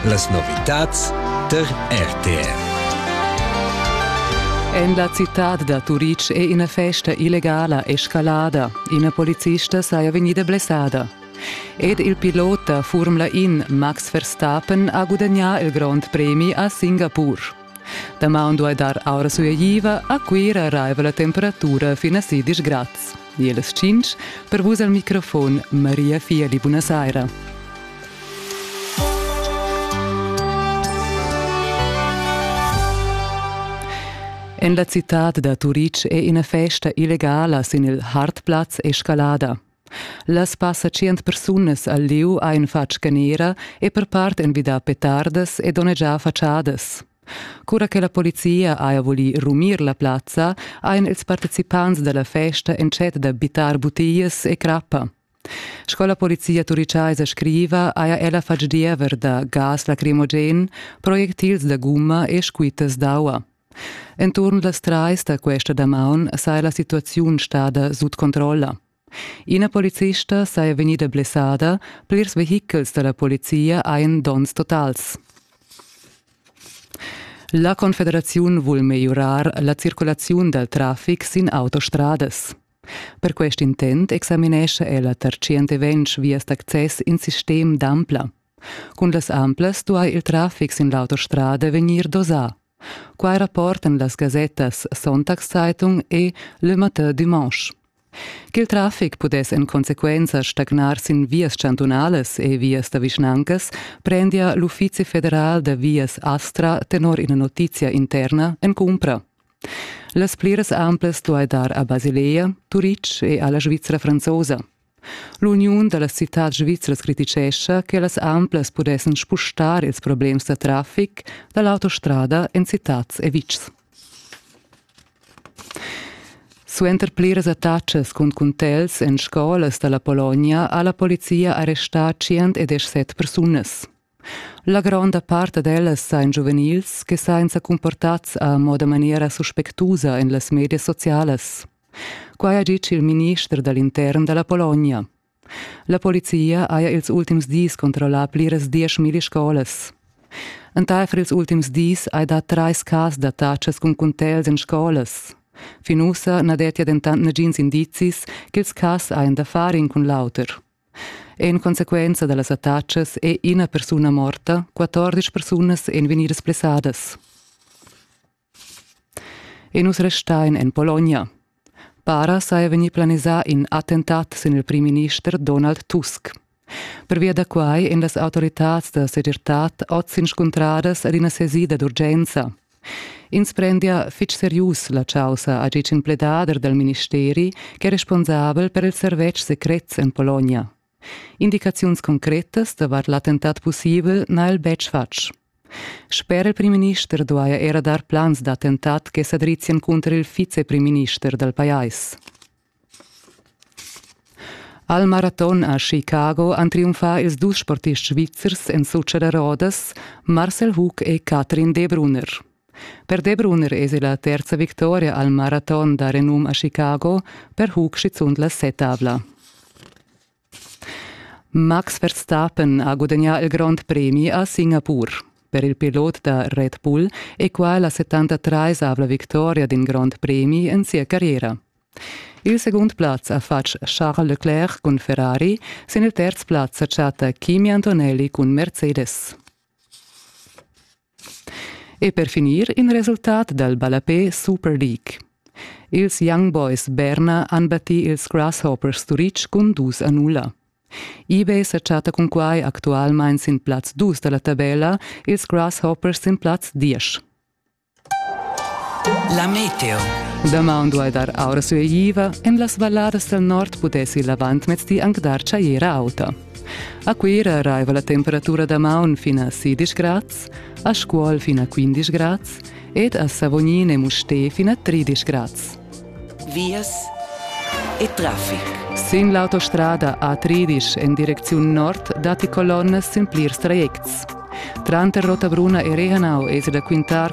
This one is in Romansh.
Las novitads tar RTR. En la citad da Turitg è ina festa illegala escalada. Ina polizista saja vegnida blessada. Ed il pilot da Formula In Max Verstappen ha gudagnà il grond premi a Singapur. Damaun duai dar aura sueigliva, a Cuira raiva la temperatura fin a sidisch grads. Ie las tschinch, per vus al microfon Maria Fieli, buna saira. En la citad da Turic è ina festa illegala sin il Hartplatz Escalada. Las passa tschient persunas al lieu ein fatg canera e per part envidà petardas e donnegià fatschadas. Cura che la polizia haja voli rumir la plazza, ein ils participants dalla festa entschet da bittar butias e crappa. Sco la polizia turicaisa scriva, haja ella fatg diever da gas lacrimogen, projectils da gumma e squittas d'aua. Enturn las trais da questa damaun saja la situaziun stada sut controlla. Ina policista saja vegnida blessada, plirs vehichels da la polizia hajan donns totals. La Confederaziun vul megliurar la circulaziun dal traffic sin autostradas. Per quest intent examinescha ella tar 120 vias d'access in sistem d'ampla. Cun las amplas duai il traffic sin l'autostrada vegnir dosà. Quai rapportan las gasettas Sonntagszeitung e Le Matin Dimanche. Ch'il traffic pudess en consequenza stagnar sin vias chantunalas e vias da vischnancas prendia l'Uffizi federal da vias Astra tenor ina notizia interna en cumpra. Las pliras amplas duai dar a Basilea, Turitg e alla Svizzera franzosa. L'uniun da la citad svizras criticescha che las amplas pudessan spustar ils problems da traffic da l'autostrada en citads e vitgs. Suenter pliras attacas cun cuntels en scolas da la Pologna ha la polizia arrestà 117 persunas. La gronda part ad ellas sajan giuvenils che sajan sa cumportads a moda maniera suspectusa en las medias socialas. Quai ha ditg il minister da l'intern da la Pologna. La polizia haja ils ultims dis controllà pliras dieschmilli scolas. Entaifer ils ultims dis hai dà trais cas d'attachas cun cuntels en scolas. Fin ussa na dettia dentant nagins indizis ch'ils cas hajan da far in cun l'auter. En consequenza dallas attacas è ina persuna morta, 14 persunas èn vegnidas blessadas. E nus restain en Pologna. Para saja vegnì planisà in attentat sin il primminister Donald Tusk. Pervia da quai èn las autoritads da segirtad oz inscuntradas ad ina sesida d'urgenza. Ins prendia fitg serius la caussa ha ditg in pledader dal ministeri ch'è responsabel per ils servetschs secrets en Pologna. Indicaziuns concretas davart l'attentat pussibel n'ha el betg fatg. Sper il primminister duaja era dar plans d'attentat che sa drizzien cunter il viceprimminister dal pajais. Al maraton a Chicago han triumfà ils dus sportists svizzers en sutscha da rodas, Marcel Hug e Katrin De Brunner. Per De Brunner esi la terza victoria al maraton da renum a Chicago, per Hug schizunt la setavla. Max Verstappen ha gudagnà il grond premi a Singapur per il pilot da Red Bull e qua la 73-avla victoria d'in grond premi en sia carriera. Il segund plaz ha fatg Charles Leclerc cun Ferrari, sin il terz plaz sa chatta Kimi Antonelli cun Mercedes. E per finir in resultat dal ballapè Super League. Ils Young Boys Berna han battì ils Grasshoppers Turitg cun dus a nulla. eBay sa chatta cun quai actualmain sin plaz dus da la tabella, ils Grasshoppers sin plaz diesch. La meteo. Damaun duai dar aura sueiva, en las valladas dal nord pudessi l'avantmezdi anc dar tschajera auta. A Cuira raiva la temperatura da maun fin a 16 grads, a Scuol fin a 15 grads ed a Savognin e Mustér fin a 13 grads. Vias e traffic. Sin l'autostrada A13 en direcziun nord datti colonnas sin plirs trajects. Tranter Rotabruna e Rehanau es da quintar